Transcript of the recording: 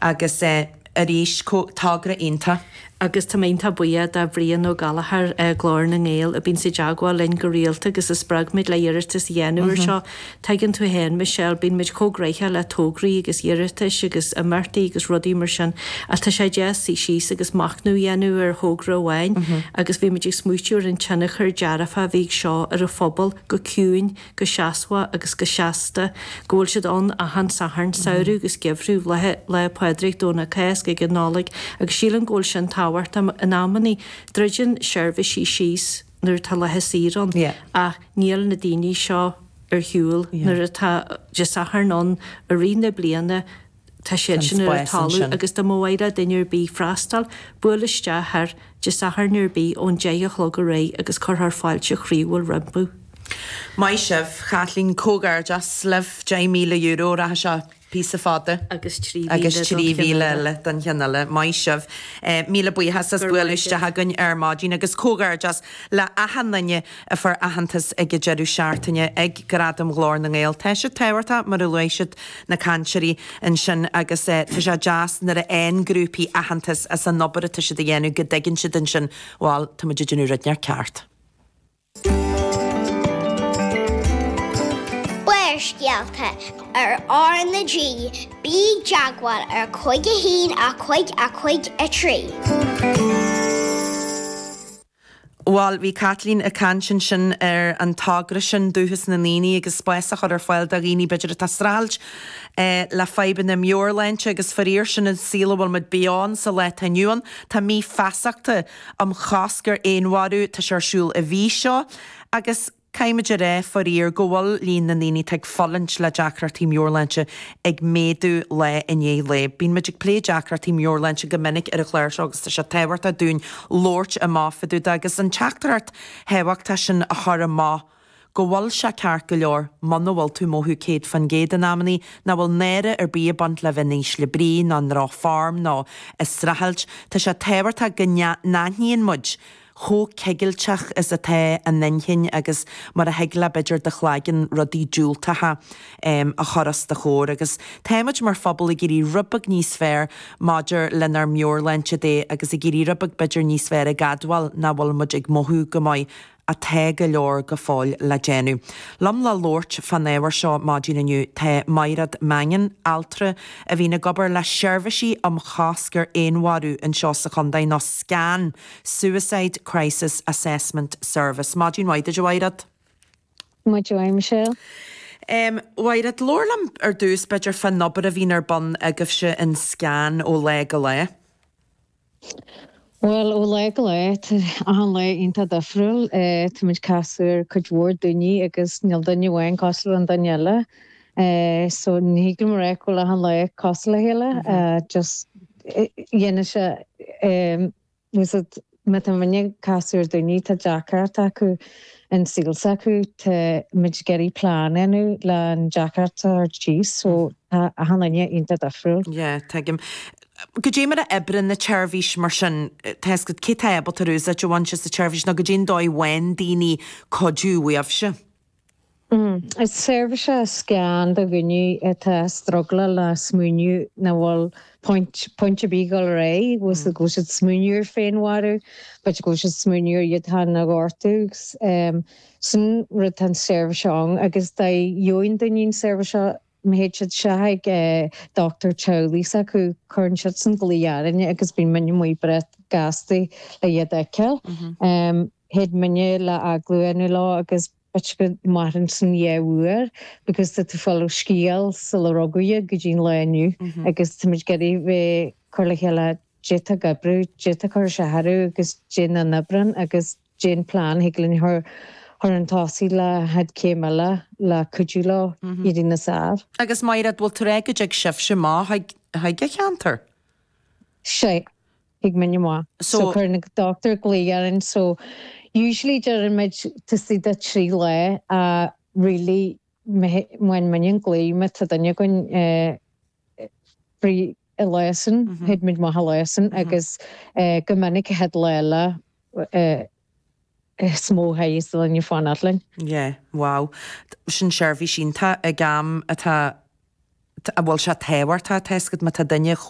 Agus arís, togra iontach. Agus tá mé iontach buíoch de Bhrian Ó Gallchóir, Glór na nGael, a bíonns i dteagmháil linn go rialta agus a spreag muid le iarratas a dhéanamh ar seo. Tuigeann tú fhéin Michelle, bíonn muid chomh gnaitheach le tograí agus iarratais agus imeachtaí agus rudaí mar sin ach tá sé deas suí síos agus machnamh a dhéanamh ar thogra amháin agus bhí muid ag smaoitiú ar an tionchar dearfach a bhí ag seo ar an phobal go ciúin go seasmhach agus go seasta, go bhfuil siad ann achan Satharn, samhradh agus geimhreadh, Laethe Lá Pádraig, Domhnach Cásca agus Nollaig, agus sílim go bhfuil sin tábhachtach. In amannaí, druideann seirbhísí síos nuair atá laethe saoire ann, ach níl na daoine seo ar shiúil nuair atá Dé Satharn ann i rith na bliana, Tá siad ansin ar an talamh agus dá mba mhaith le duine ar bith freastal, buail isteach ar Dé Sathairn ar bith ón deich a chlog ar aghaidh agus cuirfear fáilte chroíúil rompu. Maith sibh. Caitlín, Comhghairdeas libh. €10,000 rachaidh seo. Píosa fada. Agus trí mhíle. Agus trí mhíle eile don cheann eile. Maith sibh. Míle buíochas as bualadh isteach againn ar maidin. Agus comhghairdeas le achan duine. a fuair aitheantas ag an deireadh seachtaine ag Gradaim Ghlór na nGael. Tá siad tábhachtach, mar a luaigh siad na cainteoirí ansin, agus tá sé deas nuair a fhaigheann grúpaí aitheantas as an obair atá siad a dhéanamh go dtuigeann siad ansin, bhal, tá muid ag déanamh rud éigin ceart. Úrscéalta ar RnaG, Bí i dteagmháil ar 51 55 3. Bhail, bhí Caitlín ag caint ansin ar an togra sin, Dúchas na nDaoine, agus spás a chur ar fáil do dhaoine, b'fhéidir, atá ag streachailt le fadhbanna meabhairshláinte, agus faraor, sin an saol a bhfuil muid beo ann sa lá atá inniu ann. Tá mí feasachta um chosc ar fhéinmharú, tá sé ar siúl an mhí seo, agus. Caithfimid a rá, faraor, go bhfuil líon na ndaoine atá ag fulaingt le deacrachtaí meabhairshláinte ag méadú lá i ndiaidh lae. Bíonn muid ag plé deacrachtaí meabhairshláinte go minic ar an chlár seo agus tá sé tábhachtach dúinn labhairt amach fadúda agus an teachtaireacht thábhachtach sin a chur amach go bhfuil sé ceart go leor muna bhfuil tú ag mothú 100% in amannaí, nach bhfuil náire ar bith ag baint le bheith in ísle brí ná i ndrochfhoirm ná ag streachailt. Tá sé tábhachtach go n-aithníonn muid chomh cigilteach is atá an inchinn agus mar a thig le b'fhéidir do chlaigeann rudaí diúltacha a chur os do chomhair. Agus tá muid mar phobal ag éirí rud beag níos fearr maidir lenár meabhairshláinte de agus ag éirí rud beag b'fhéidir níos fearr ag admháil nach bhfuil muid ag mothú go maith ach tá go leor go fóill le déanamh. Liom le labhairt fán ábhar seo maidin inniu tá Mairéad Mangan, altra a bhíonn ag obair le seirbhísí um chosc ar fhéinmharú anseo sa chontae, nó scan Suicide Crisis Assessment Service. Maidin mhaith duit, a Mhairéad. Maidin mhaith, Michelle. Em, Mhairéad, labhair liom ar dtús, b'fhéidir, fán obair a bhíonn ar bun agaibhse in SCAN ó lá go lá. Bhuel, ó lá go lá, achan lá iontach difriúil. Eh, táimid ag casadh ar cuid mhór daoine agus níl duine amháin cosúil le an duine eile. Eh, so ní thig liom a rá go bhfuil achan lá cosúil le chéile, eh, just, dhéanann sé, em, Musad, má tá muidne ag casadh ar dhaoine, tá deacracht acu an saol s'acu, tá muid ag iarraidh plean a dhéanamh le an deacracht a thabhairt síos, so tá achan duine iontach difriúil. Yeah, tuigim. Cad é mar a oibríonn an tseirbhís mar sin, tá fhios agat, cé tá ábalta úsáid a bhaint as an tseirbhís nó cad é an dóigh a bhfaigheann daoine cuidiú uaibhse. Is seirbhís é SCAN do dhaoine atá ag struggleáil le smaoineamh nach bhfuil point, point ar bith dul ar aghaidh, go bhfuil siad ag smaoineamh ar féinmharú, go bhfuil siad ag smaoineamh ar iad féin a ghortú. Sin rud, tá an seirbhís seo ann agus dóigh a gheobhaidh an duine an seirbhís seo, Má théid siad isteach ag dochtúir teaghlaigh s'acu, cuireann siadsan glaoch orainne agus bíonn muidne amuigh breá gasta le iad a fheiceáil. Théid muidne le agallamh a dhéanamh leo agus b'fhéidir go maireann sin dhá uair because tá tú ag fáil scéal sular rugadh iad go dtí an lá inniu agus táimid ag iarraidh bheith cur le chéile, cad é atá ag oibriú, cad é atá ag cur isteach orthu agus cad é nach n-oibríonn agus. Cad é an plean thig linn a chur chun tosaigh le chéad chéim eile le cuidiú leo éirí níos fhearr. Agus Mairéad, bhfuil tú ag rá go dtig sibhse amach chuig an cheantar? Sea, thig muidne amach. So, So cuireann an dochtúir glaoch orainn, so usually deireann muid taobh istigh de trí lá ach really má fhaigheann muidne an glaoch má tá duine againn eh, Free Eleison, Head Mid Maith Eleison, agus go minic Head Lella is mó high is the line of fáin at linn. Yeah, wow. Sin seirbhís iontach ag am atá, bhuel, sé tábhachtach atá, is go mba tá duine chomh.